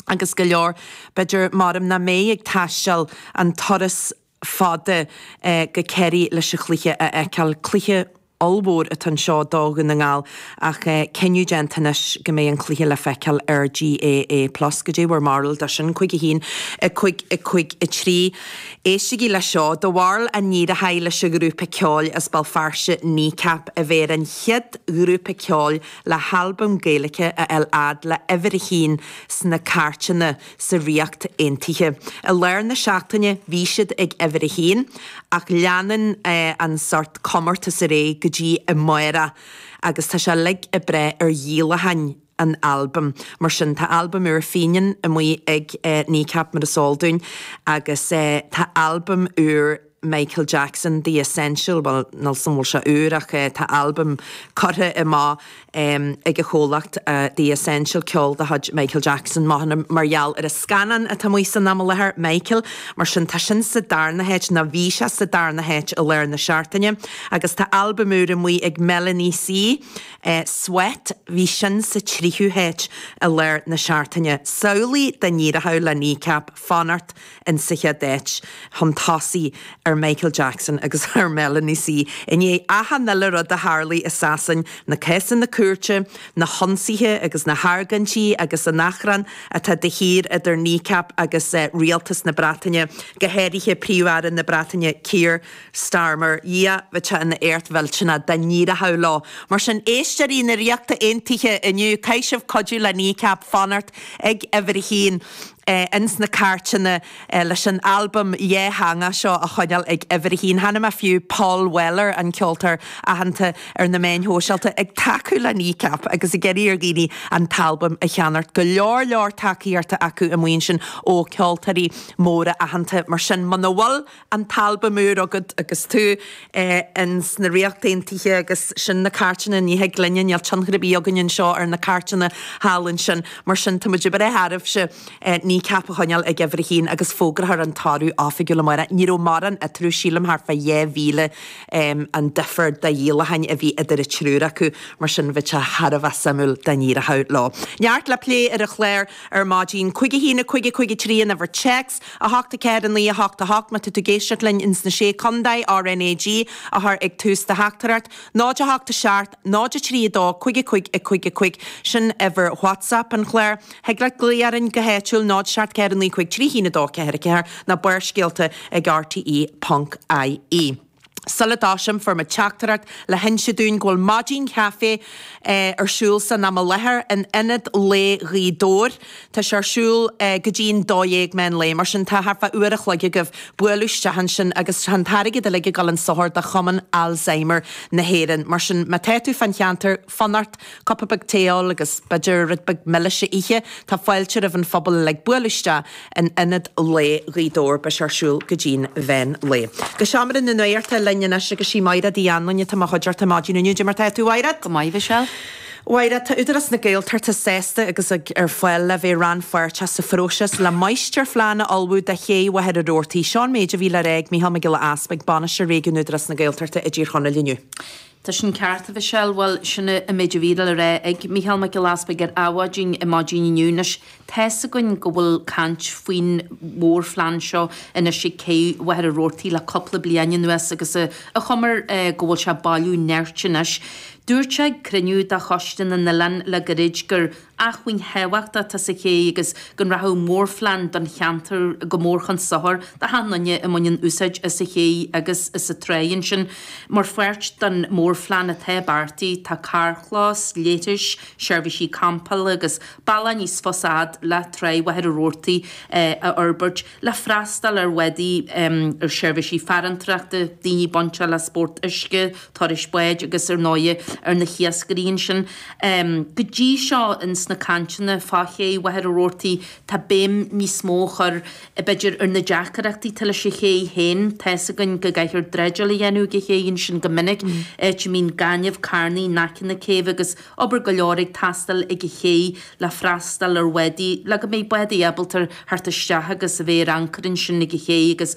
agus go leor, b'fhéidir, maram nach mbeidh ag taisteal an turas fada go Ciarraí leis an chluiche a fheiceáil. Cluiche ollmhór atá anseo do Dhún na nGall ach cinneadh déanta anois go mbeidh an cluiche le feiceáil ar GAA Plus goidé bhur mbarúil de sin, 5-1-5-5-3. Éistigí leis seo, do bharúil an éireochaidh leis an ghrúpa ceoil as Béal Feirste, Kneecap, a bheith ar an chéad ghrúpa ceoil le halbam Gaeilice a fháil a fhad le huimhir a haon sna cairteanna sa Ríocht Aontaithe. I lár na seachtaine bhí siad ag uimhir a haon, ach leanann an sórt comórtas ar aghaidh go dtí amáireach agus tá sé uilig ag brath ar dhíolacháin an albaim. Mar sin, tá albam úr Fenian amuigh ag Kneecap mar is eol dúinn agus tá albam úr. Michael Jackson, The Essential, bhuel, níl a fhios agam an bhfuil seo úr ach tá albam curtha amach ag a chomhlacht, The Essential, ceol de chuid Michael Jackson, mothaím, mar gheall ar an scannán atá amuigh san am i láthair, Michael. Mar sin, tá sin sa darna háit, nó bhí sé sa darna háit i lár na seachtaine. Agus tá albam úr amuigh ag Melanie C, Sweat, bhí sin sa tríú háit i lár na seachtaine. Samhlaigh dá n-éireochadh le Kneecap fanacht ins an chéad áit chun tosaigh ar Michael Jackson agus ar Melanie C i ndiaidh achan uile rud a tharlaigh i Sasain, na cásanna cúirte, na hionsaithe agus na hargóintí agus an achrann atá de shíor idir Kneecap agus rialtas na Breataine, go háirithe Príomh-Aire na Breataine Keir Starmer. Dhia bheadh sé ina éacht mhillteanach dá n-éireochadh leo. Mar sin, Éisteoirí na Ríochta Aontaithe inniu, caithfidh sibh cuidiú le Kneecap fanacht ag uimhir a haon ins na cairteanna leis an albam dhátheangach seo a choinneáil ag uimhir a haon. Chonaic mé fiú, Paul Weller, an ceoltóir aitheanta ar na meáin shóisialta, ag tacú le Kneecap agus ag iarraidh ar dhaoine an t-albam a cheannacht. Go leor leor tacaíochta acu amuigh ansin ó ceoltóirí móra aitheanta. Mar sin, muna bhfuil. an t-albam úr agat agus tú in sna Ríocht Aontaithe agus sin na cairteanna ní thig linne, níl tionchar ar bith againn anseo ar na cairteanna thall ansin mar sin tá muid ag brath oraibhse Kneecap a choinneáil ag uimhir a haon agus fógrófar an toradh oifigiúil amáireach. Ní raibh mórán eatarthu, sílim thart fá dhá mhíle an difear de dhíolacháin a bhí idir an triúr acu mar sin bheadh sé thar a bheith suimiúil dá n-éireochadh leo. Neart le plé ar an chlár. Ar maidin, Cúig a hAon, Cúig a Cúig a Trí an uimhir téacs, a hocht a Ceathair a Naoi a hocht a hocht má tá tú ag éisteacht linn ins na Sé Condae, RnaG, a chur ag tús do theachtaireacht, Náid a hocht a seacht, Náid a trí a dó, Cúig a Cúig a Cúig a Cúig, sin uimhir WhatsApp an chláir. Thig leat glaoch orainn go háitiúil, Náid a seacht Ceathair a Naoi Cúig Trí hAon a dó Ceathair a Ceathair, nó barrscéalta ag rte.ie. Sula dtoisím, fuair mé teachtaireacht le hinse dúinn go bhfuil maidin chaife ar siúl san am i láthair in Ionad Lae Ghaoth Dobhair. Tá sé ar siúl go dtí'n dó dhéag meán lae, mar sin tá thart fá uair a chloig agaibh bualadh isteach ansin agus tá an t-airgead uilig ag dul chun sochair do Chumann Alzheimer na hÉireann. Mar sin má tá tú fán cheantar, Fonn ort cupa beag tae a ól agus b'fhéidir rud beag milis a ithe? Tá fáilte roimh an phobal uilig bualadh isteach in Ionad Lae Ghaoth Dobhair. Beidh sé ar siúl go dtí'n mheán lae. Go seomra na nuachta linn anois agus sí Máiread Uí Annluain atá i mo chuideachta maidin inniu. Cad é mar tá tú a Mháiread! Go maith, Mhichelle. Mháiread, tá Údarás na Gaeltachta sásta agus ar fáil le bheith rannpháirteach sa phróiseas le máistirphlean a ullmhú do ché Mhachaire Rabhartaigh. Seo an méid a bhí le rá ag Micheál Mac Giolla Easpaig, Bainisteoir Réigiún Údarás na Gaeltachta i dTír Chonaill inniu. Tá sin ceart, a Mhichelle. Bhuel, sin é an méid a bhí le rá ag Mícheál Mac Giolla Easpaig ar Adhmhaidin ar maidin inniu. Anois, tá's againn go bhfuil caint faoin mhórphlean seo anois ag cé Mhachaire Rabhartaigh le cupla bliain anuas agus an chuma air go bhfuil sé ag bailiú nirt anois. Dúirt sé ag cruinniú de Choiste na nOileán le gairid gur. acmhainn thábhachtach atá sa ché agus go rachadh mórphlean don cheantar go mór chun sochair do achan nduine a mbaineann úsáid as an ché agus as an tráigh ansin. Mar pháirt den mórphlean atá beartaithe tá carrchlós, leithris, seirbhísí campála agus bealach níos fusa fhad le tráigh Mhachaire Rabhartaigh a fhorbairt. le freastal ar bhádaí, ar sheirbhísí farantóireachta, daoine bainteach le spórt uisce, turais báid agus ar ndóighe ar na hiascairí ansin. Go dtí seo ins na cainteanna fá ché Mhachaire Rabhartaigh tá béim níos mó á chur, b'fhéidir, ar na deacaireachtaí atá leis an ché féin. Tá's againn go gcaiththear dreideáil a dhéanamh ag an ché ansin go minic, áit a mbíonn gaineamh ag carnadh in aice na céibhe agus. obair go leor ag teastáil ag an ché le freastal ar bhádaí, le go mbeidh bádaí ábalta theacht isteach agus a bheith ar ancaire ansin ag an ché agus.